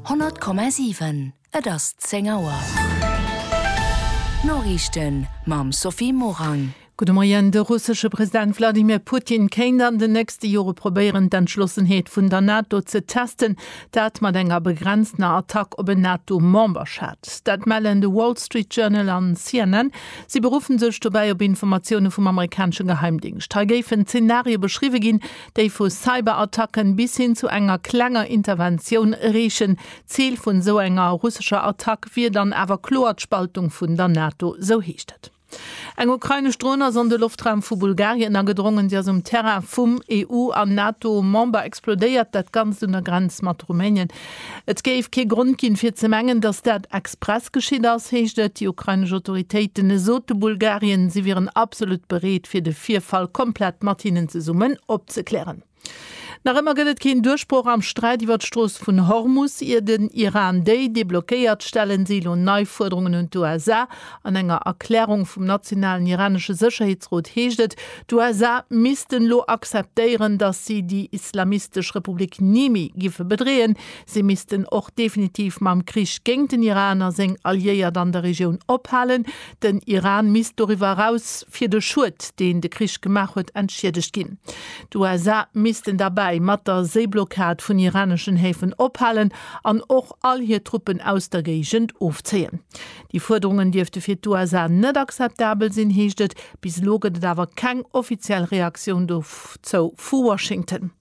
100,7 Et ass 10 Auer. D'Noriichten mam Sophie Morang. Gudde Moien. De russesche President Wladimir Putin kéint an den nächste Jore probéieren, d'Entschlossenheet vun der NATO ze testen. Dat mat enger begrenztener Attack op en NATO-Memberschat. Dat mellen de Wall Street Journal an CNN. Si beruffen sech dobäi op Informatioune vum amerikanesche Geheimdingscht. Hei géifen Zenarie beschriwwe ginn, déi vu Cyberattacken bis hin zu enger klenger Interventioun reechen. D'Zil vun esou enger russescher Attack wier dann awer kloer d'Spaltung vun der NATO, esou heescht et. Eng ukrainesch Dron ass an de Loftraum vu Bulgarien agedrongen. Si ass um Terrain vum EU an NATO-Member explodéiert, dat Ganzt un der Grenz mat Rumänien. Et géif kee Grond ginn, fir ze mengen, datt dat express geschitt ass, heescht et. Déi ukrainesch Autoritéiten sote Bulgarien, si wieren absolut bereet, fir de Virfall komplett mat hinnen zesummen opzeklären. Nach ëmmer gëtt et keen Duerchbroch am Sträit iwwer d'Strooss vun Hormus, ier den Iran déi deblockéiert. Stellen si elo nei Fuerderungen un d'USA? An enger Erklärung vum nationalen iranesche Sécherheetsrot heescht et, d'USA missten elo akzeptéieren, datt si déi islamistesch Republik ni méi géife bedreeën. Si missten och definitiv mam Krich géint den Iran a seng Alliéiert an der Regioun ophalen. Den Iran misst doriwwer eraus fir de Schued, deen de Krich gemaach huet, entschiedegt ginn. D'USA missten derbäi mat der Séiblockad vun iraneschen Häfen ophalen an och all hir Truppen aus der Géigend ofzéien. Déi Fuerderungen dierfte fir d'USA net akzeptabel sinn, heescht et. Bis elo gëtt et awer keng offiziell Reaktioun dozou vu Washington.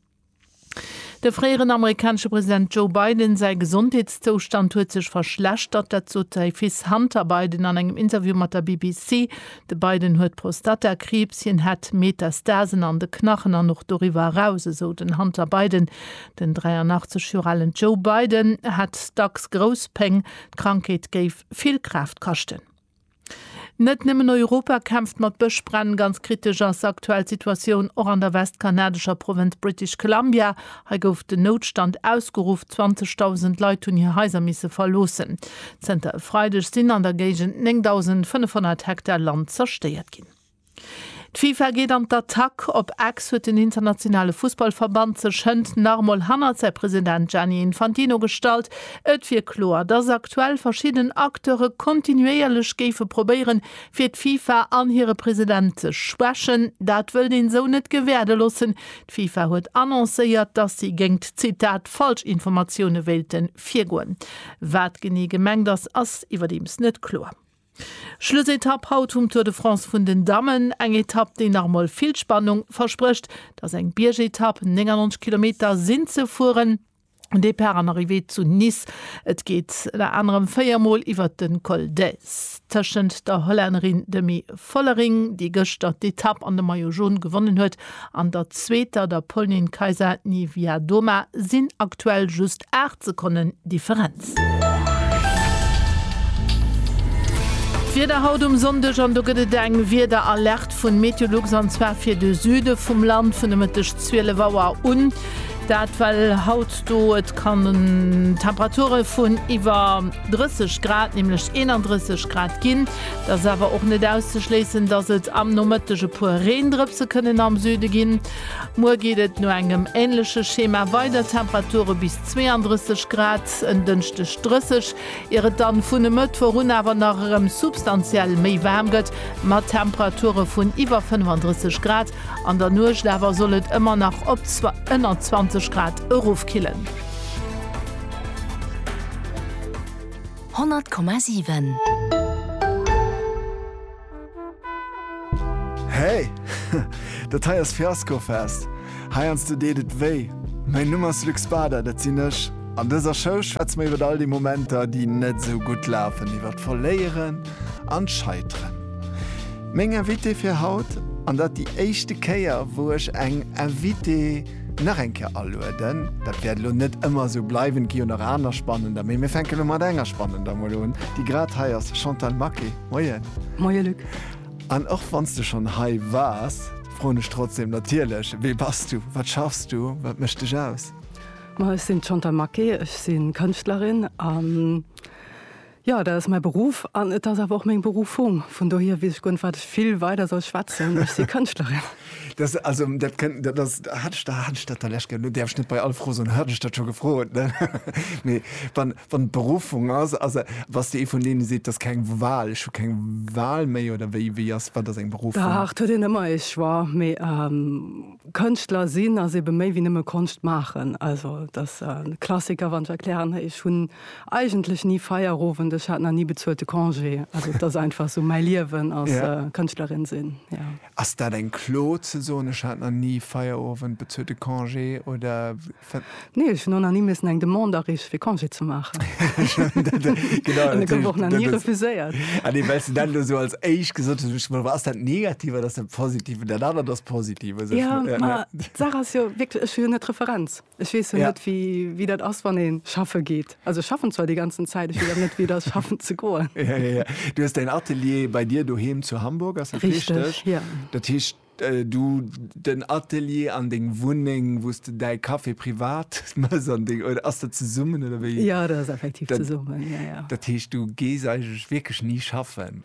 De fréieren amerikanesche President Joe Biden säi Gesondheetszoustand huet sech verschlechtert. Dat sot säi Fils Hunter Biden an engem Interview mat der BBC. De Biden huet Prostatakriibs. Hien hätt Metastasen an de Knachen an och doriwwer eraus, esou den Hunter Biden. Den 83 Joer alen Joe Biden hätt dacks grouss Péng. D'Krankheet géif vill Kraaft kaschten. Net nëmmen Europa kämpft mat Bëschbränn. Ganz kritesch ass aktuell d'Situatioun och an der westkanadescher Provënz British Columbia. Hei gouf den Noutstand ausgeruff, 20.000 Leit hunn hir Haiser misse verloossen. Zënter e Freideg sinn an der Géigend 9.500 Hektar Land zerstéiert ginn. D'FIFA geet an d'Attack, op Ex huet den internationale Fussballverband sech hënt nach emol hannert säi President Gianni Infantino gestallt. Et wier kloer, datt aktuell verschidden Acteure kontinuéierlech géife probéieren, fir d'FIFA an hire President ze schwächen. Dat wëllt een esou net gewäerde loossen. D'FIFA huet annoncéiert, datt si géingt, Zitat, Falschinformatioune wéilte virgoen. Wat genee gemengt ass, ass iwwerdeems net kloer. Schlussetapp haut vum Tour de France vun den Dammen. Eng Etapp, déi nach emol vill Spannung versprécht. Et ass eng Biergetapp, 99 Kilometer sinn ze fueren, Depart an Arrivée zu Nice. Et geet ënner anerem véier Mol iwwert de Col d'Èze tëschent der Hollännerin Demi Vollering, déi gëschter d'Etapp an de Maillot Jaune gewonnen huet, An der zweeter, der Polnin Kaisa-Niewiadoma, sinn aktuell just 8 Sekonnen Differenz. D'Wieder haut um Sonndeg, an do gëtt et eng Wiederalerte vun Meteolux, an zwar fir de Süde vum Land vun de Mëtteg 12 Auer un. Dat well haut do et kann Temperature vun iwwer 30 Grad, nämlech 31 Grad ginn. Et ass awer och net auszeschléissen, dass et am Nomëtteg e puer Reendrëpse kënnen am Süde ginn. Muer geet et no engem änleche Schema weider, Temperature bis 32 Grad, en Dënschdeg 30, ier et dann vun e Mëttwoch un awer nach erëm substantiell méi waarm gëtt, mat Temperature vun iwwer 35 Grad. An der Nuecht awer soll et ëmmer nach op ënner 20 Grad erofkillen. 100,7. Hey! Dat hei ass Fiaskofest! Heiansdo deet et wéi. Mäin Numm ass Luc Spada, dat sinn ech. An dëser Show schwätze mer iwwer all déi Momenter, déi net esou gutt lafen, iwwer d'Verléieren an d'Scheiteren. Meng Invitée fir haut, an dat déi éischte Kéier, wou ech eng Invitée. nach eng Kéier alueden. Dat wäert elo net ëmmer esou bleiwen, et gi jo nach aner spannender, mee mir fänke elo mat enger spannender mol un, déi grad hei ass, Chantal Maquet, Moien! Moie Luc! An och wann s de schonn hei waars, froen ech trotzdeem natierlech, Wie bass du? Wat schaffs du? Wat mécht dech aus? Ma ech sinn d'Chantal Maquet, ech si Kënschtlerin a Jo, dat ass mäi Beruff an et ass awer och meng Beruffung. Vun dohier weess ech guer net, wat ech vill weider soll schwätzen. Ech si Kënschtlerin. Dat, also, dat kënnt, dat ass, hat ech dat, hat ech dat der lech ge. Lo däerf ech net bei all Fro soen, hat ech dat scho gefrot, ne? Mee wann, wann d'Beruffung ass, ass e, bass de ee vun deene seet, 't ass keng Wal, ech hu keng Wal méi oder wéi, wéi ass, wat ass eng Beruffung? Dach, 't huet een ëmmer ee Choix, mee Kënschtler sinn ass eebe méi wéi nëmme Konscht maachen. Also, 't ass e Klassiker, wann ech erklären, ech hunn. Eigentlech ni Feierowend, ech hat nach ni bezuelte Congé. Also et ass einfach esou mäi Liewen als Kënschtlerin sinn, jo. Ass dat eng Klo ze soen, ech hat nach ni Feierowend, bezuelte Congé oder? Nee, ech hunn och nach ni missen eng Demande areeche fir Congé ze maachen. An e gouf och nach ni refuséiert. Ah nee, well s de dat elo esou als éischt gesot hues, duecht ech mer, ass dat negativ oder ass dat positiv? Dat anert ass positiv. Jo, ma d'Saach ass jo wierklech, ech hu jo net d'Referenz. Ech weess jo net wéi dat ass wann ee schaffe geet. Also ech schaffen zwar déi ganzen Zäit, ech weess awer net wéi et ass schaffen ze goen. Du hues däin Atelier bei dir doheem zu Hamburg, ass dat richteg? Dat heescht du den Atelier an deng Wunneng, wou s de däi Café privat mëss an deng oder ass dat zesummen oder wéi? Jo dat ass effektiv zesummen. Dat heescht du gees eigentlech wierklech ni schaffen?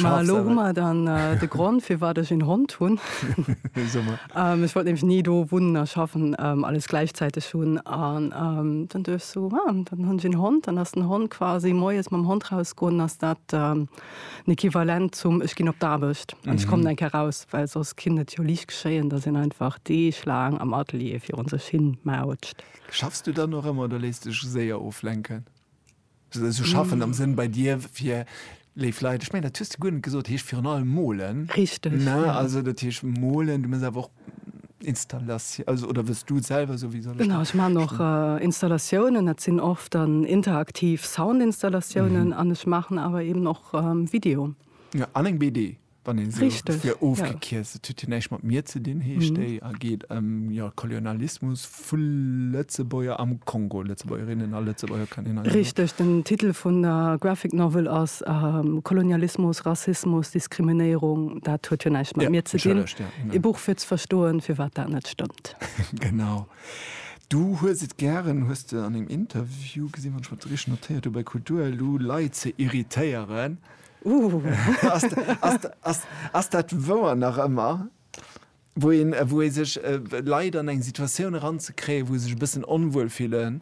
Ma elo hu mer dann de Grond, firwat ech een Hond hunn. Ech wollt nämlech ni do wunnen a schaffen, alles gläichzäiteg hunn. An dann duecht ech sou, ah, dann hunn ech een Hond. Dann ass den Hond quasi moies mam Hond rausgoen, ass dat den Equivalent zum ech ginn op d'Aarbecht an ech kommen eng Kéier raus. Well soss kinnt et jo liicht geschéien, datt een einfach deeglaang am Atelier virun sech hin mautscht. Schaffs du dann och ëmmer oder léiss dech séier oflenken? Sou schaffen am Sënn bei dir fir léif Leit. Ech mengen dat hues de guer net gesot, heescht virun allem molen. Richteg, ne? Ja. Also dat heescht molen, du mëss awer och Installatiou, also oder wëlls du selwer sou wéi soll ech Genau, ech maachen och Installatiounen, dat sinn oft dann interaktiv Soundinstallatiounen an ech maachen awer eben och Video. Ja, an eng BD. Wann een se fir ofgekierzt, et huet hien näischt mat mir ze dinn, heescht déi a geet ëm Kolonialismus vu Lëtzebuerger am Kongo, Lëtzebuergerinnen a Lëtzebuerger Kanner. Richteg, den Titel vun der Graphic Novel ass Kolonialismus, Rassismus, Diskriminéierung. Dat huet jo näischt mat mir ze dinn. E Buch fir ze verstoen, firwat dat net stëmmt. Genau. Du hues et gären, hues de an engem Interview gesinn, wann ech mer dat richteg notéiert hu bei Kultur elo, Leit ze irritéieren. Ass dat wouer nach ëmmer? Wou een, wou ee sech, Leit an eng Situatioun eranzekréien, wou se sech e bëssen onwuel fillen?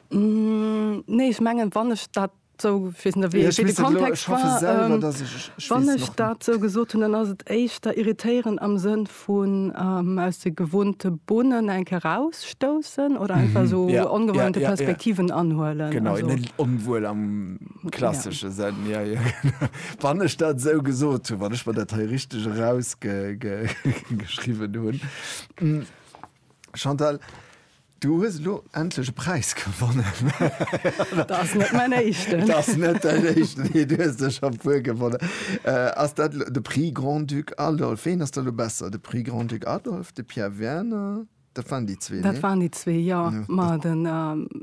Nee, ech mengen, wann ech dat esou, ech weess net, wéi de Kontext war, wann ech dat esou gesot hunn, dann ass et éischter irritéieren am Sënn Vun aus de gewohnte Bonnen eng Kéier rausstoussen oder einfach esou ongewohnte Perspektiven anhuelen? Genau, net onwuel am klassesche Sënn. Jo, jo, genau. Wann ech dat esou gesot hunn, wann ech mer dat hei richteg erausgeschriwwen hunn. Chantal, Du hues elo endlech e Präis gewonnen. Dat ass net mäin éischten. Dat ass net däin éischten, mee du hues der scho e puer gewonnen. Ass dat elo de Prix Grand-Duc Adolphe? Ween ass da elo besser, de Prix Grand-Duc Adolphe, de Pierre Werner? Dat waren déi zwee, nee? Dat waren déi zwee, jo. Ma den,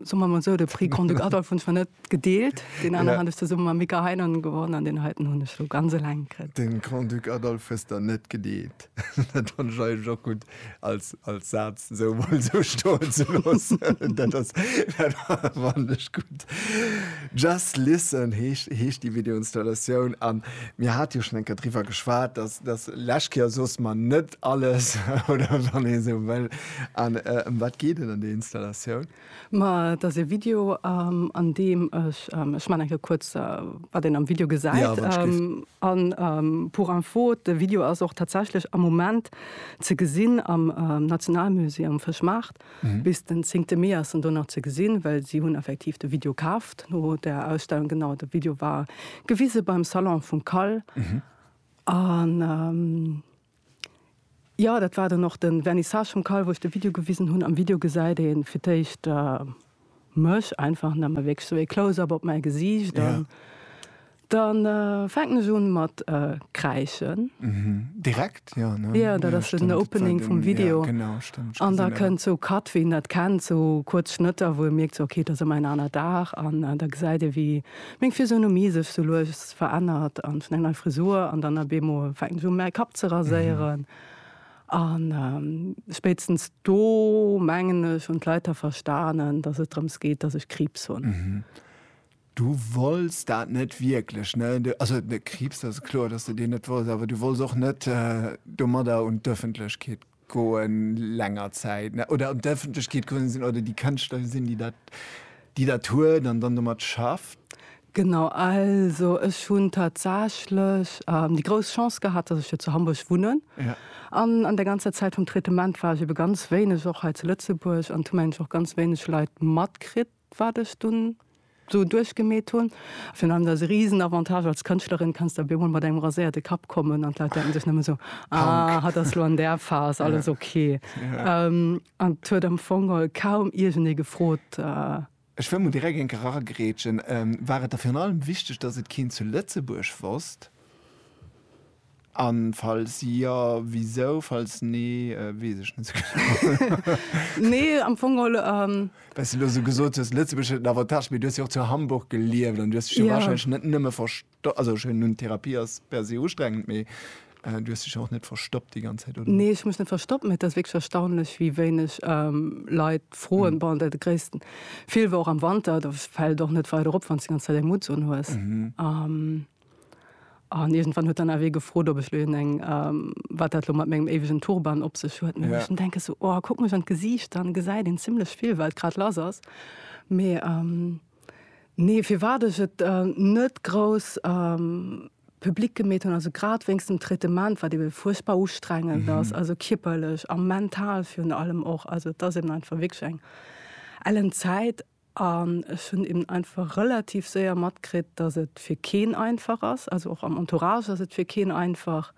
soe mer emol esou, de Prix Grand-Duc Adolphe hunn ech mer net gedeelt. Deen aneren hat ech zesumme mam Mika Heinonen gewonnen an deen heiten hunn ech elo ganz eleng kritt. De Grand-Duc Adolphe hues der net gedeelt? Dat fannen ech eigentlech och gutt als als Saz esou emol esou stoen ze loossen. Dat ass dat fannen ech gutt. Just Listen heescht heescht déi Videoinstallatioun an mir hate jo schonn eng Kéier driwwer geschwat, dass dass lech Kéier soss mer net alles oder wann ee esou wëll an ëm wat geet et an där Installatioun? Ma et ass ee Video an deem ech, ech man enke kuerz wat een am Video gesäit an pour info de Video ass och tatsächlech am Moment ze gesinn am Nationalmusée am Fëschmaart, bis den zéngte Mee ass en do nach ze gesinn, well si hunn effektiv de Video kaaft no der Ausstellung. Genau, de Video war gewise beim Salon vum Kal an. Jo dat war dann och den Vernissage vum Call wou ech de Video gewisen hunn. Am Video gesäit een fir d'éischt mech einfach an da man wierklech sou ee Close up op mäi Gesiicht an dann fänken ech un mat kräischen. Direkt jo ne? Jo dat ass den Opening vum Video an da kënnt sou Cut wéi een dat kennt sou kuerz Schnëtter wou ee mierkt sou ok et ass ëmmer en aner Dag an da gesäit ee wéi Meng Physionomie sech sou lues verännert an hunn eng nei Frisur an dann ab eemol fänken ech u mäi Kapp ze raséieren an spéitstens do mengen ech hunn d'Leit da verstanen, dass et drëms geet, dass ech Kriibs hunn. Du wolls dat net wierklech, ne? Also Kriibs, dat ass kloer, dass de deen net wolls, awer du wolls och net domadder un d'Ëffentlechkeet Goen länger Zäit ne oder an d'Ëffentlechkeet komm sinn oder déi Kënschtler sinn, déi dat, déi dat huet an dann domat schafft? Genau, also ech hunn tatsächlech déi grouss Chance gehat, datt ech jo zu Hamburg wunnen. Ja. An an der ganzer Zäit vum Traitement war ech ebe ganz wéineg och hei zu Lëtzebuerg an hu mengen ech och ganz wéineg Leit matkritt. wat ech dunn esou duerchgemeet hunn. Virun allem ass e risen Avantage als Kënschtlerin, kanns de op eemol mat engem raséierte Kapp kommen an d'Leit denken sech nëmme esou, ah, hatt ass elo an där Phas, alles ok. An et huet am Fong kaum iergendee gefrot. Ech wëll mol direkt eng Kéier eragrätschen, War et der virun allem wichteg, datt et keen zu Lëtzebuerg wosst? An falls jo, wisou? Falls nee, wees ech net sou genau. Nee, am Fong geholl. Well s de elo sou gesot hues, Lëtzebuerg huet en Avantage, mee du hues jo och zu Hamburg gelieft an du hues dech jo warscheinlech net nëmme verstoppt, also ech hunn Therapie ass per se ustrengend, mee du hues dech jo och net verstoppt déi ganz Zäit, oder? Nee, ech hu mech net verstoppt, mee et ass wierklech erstaunlech, wéi wéineg Leit froen. Bon, de gréissten Vill war och am Wanter, do fält et och net weider op, wann s de déi ganz Zäit eng Mutts unhues. An iergendwann huet dann awer ee gefrot, ob ech lo een eng, wat dat lo mat mengem éiwegen Turban op sech huet. Mee ech muss denken, sou, oh, kuck mech an d'Gesiicht, dann gesäit een zimlech vill, wat grad lass ass. Mee nee, firwat ech et net grouss public gemeet hunn, also grad wéinst dem Traitement, wat ebe fuerchtbar ustrengend ass, also kierperlech a mental virun allem och. Also et ass eben einfach wierklech eng ellen Zäit. An ech hunn eben einfach relativ séier matkritt, dass et fir keen einfach ass, also och am Entourage ass et fir keen einfach.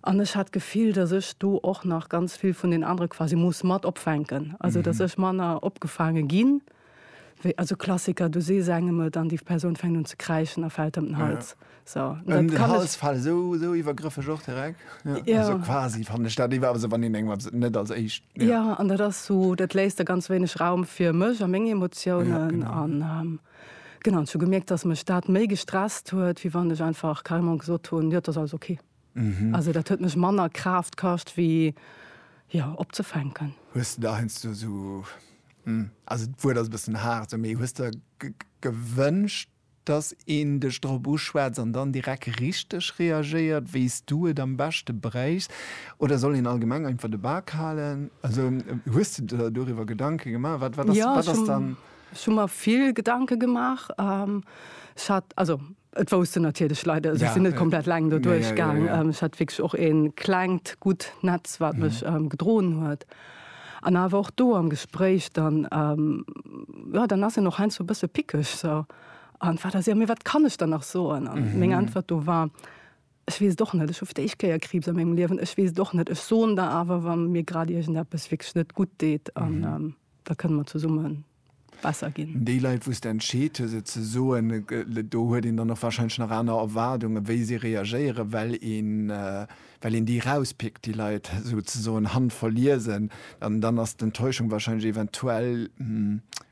An ech hat d'Gefill, dass ech do och nach ganz vill vun den anere quasi muss mat opfänken, also dass ech manner opgefaange ginn, wéi, also Klassiker, du sees engem et an déi Persoun fänkt un ze kräischen a fält ëm den Hals. So, an den Hals fallen, so, so iwwergrëffeg och direkt. Ja. Ja. Also quasi fand ich dat iwwer se wann den eng net als éischt. Ja. ja, an dat ass so, dat léist der ganz wéineg Raum fir mech a meng Emotiounen ja, genau. an ähm, genau, zu gemerkt, dass mech dat méi gestresst huet, wie wann ech einfach carrément gesot hunn, ja, das alles okay. Mhm. Also dat huet mech manner Kraft kascht wie ja opzefänken. Hues du da hest du so hm, also d'Wuert ass bëssen hart, méi hues der gewënscht Dass een dech drop uschwätzt an dann direkt richteg reagéiert, wéi s du et am beschte bréichs. Oder soll een allgemeng einfach de Bak halen? Also hues de der doriwwer Gedanke gemaach? Wat, wat ass, wat ass dann. Jo, ech hu mer vill Gedanke gemaach. Ech hat, also et wousst en natierlech Leit, also ech sinn net komplett eleng do duerchgaang. Ech hat wierklech och e klengt, gutt Netz, wat mech gedroen huet. An awer och do am Gespréich dann, jo, dann ass een och heiansdo e bësse pickeg, sou, an wat ass, jo, mee wat kann ech dann nach soen? An meng Äntwert do war, Ech weess et och net, ech hu fir d'éischt Kéier Kriibs a mengem Liewen, ech weess et och net, ech soen der awer, wa mir grad iergendeppes wierklech net gutt deet, an da kënne mer zesummen besser ginn. Déi Leit, wou s de entscheet hues et ze soen, do huet een dann och warscheinlech nach aner Erwaardungen, wéi si reagéieren, well een, well een déi rauspickt, déi Leit esouzesoen handverliesen. An dann ass d'Enttäuschung warscheinlech eventuell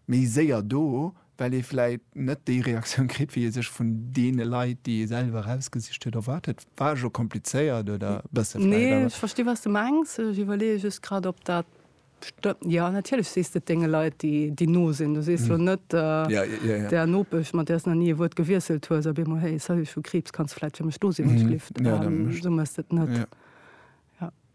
méi séier do, well ee vläicht net déi Reaktioun kritt, wéi ee sech vun deene Leit, déi ee selwer erausgesicht huet, erwaart huet. War ech och komplizéiert oder e bësse vläicht? Nee, ech versti wat s de mengs. Ech iwwerleeë just grad, ob dat Jo, natierlech sees de et denge Leit, déi no sinn. Du sees jo net der Nopesch, mat där s nach ni e Wuert gewiesselt hues, op eemol, Hey, salut, ech hu Kriibs, kanns du vläit fir mech do sinn, wann ech lift? Esou méchs de et net.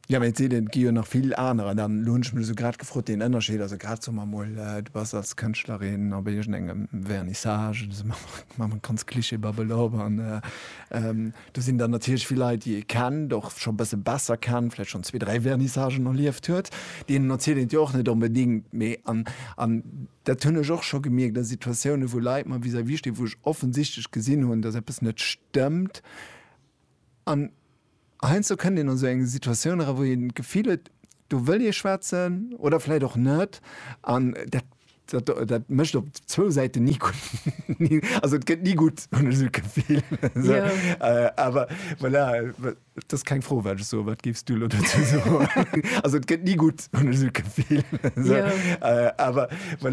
Jo, mä et si et gi jo nach vill anerer. Dann elo hunn ech mech esou grad gefrot, deen Ënnerscheed, also grad soe mer emol, du bass als Kënschtlerin op iergendengem Vernissage, ech soe mer, maache mer ganz klischeebabbel op an, Do sinn dann natierlech vill Leit, déi ee kennt, och scho e bësse besser kennt, vläicht schonn zwee, dräi Vernissagen erlieft huet. Deenen erzielt een et jo och net onbedéngt. Mee, an, an dat hunn ech och scho gemierkt a Situatiounen, wou Leit mer vis-à-vis stinn, wou ech offensichtlech gesinn hunn, datt eppes net stëmmt. An heiansdo kënnt een an esou eng Situatioun era, wou een d'Gefill huet, do wëll ee schwätzen oder vläicht och net. An dat Dat, dat mécht op zwou Säiten ni gutt. Also et gëtt ni gutt, hunn ech esou d'Gefill. Esou. Jo. Äh, awer voilà, dat ass keng Fro, wat ech soen. Wat géifs du elo dozou soen? Also et gëtt ni gutt, hunn ech esou d'Gefill. Esou. Jo. Äh, awer voilà.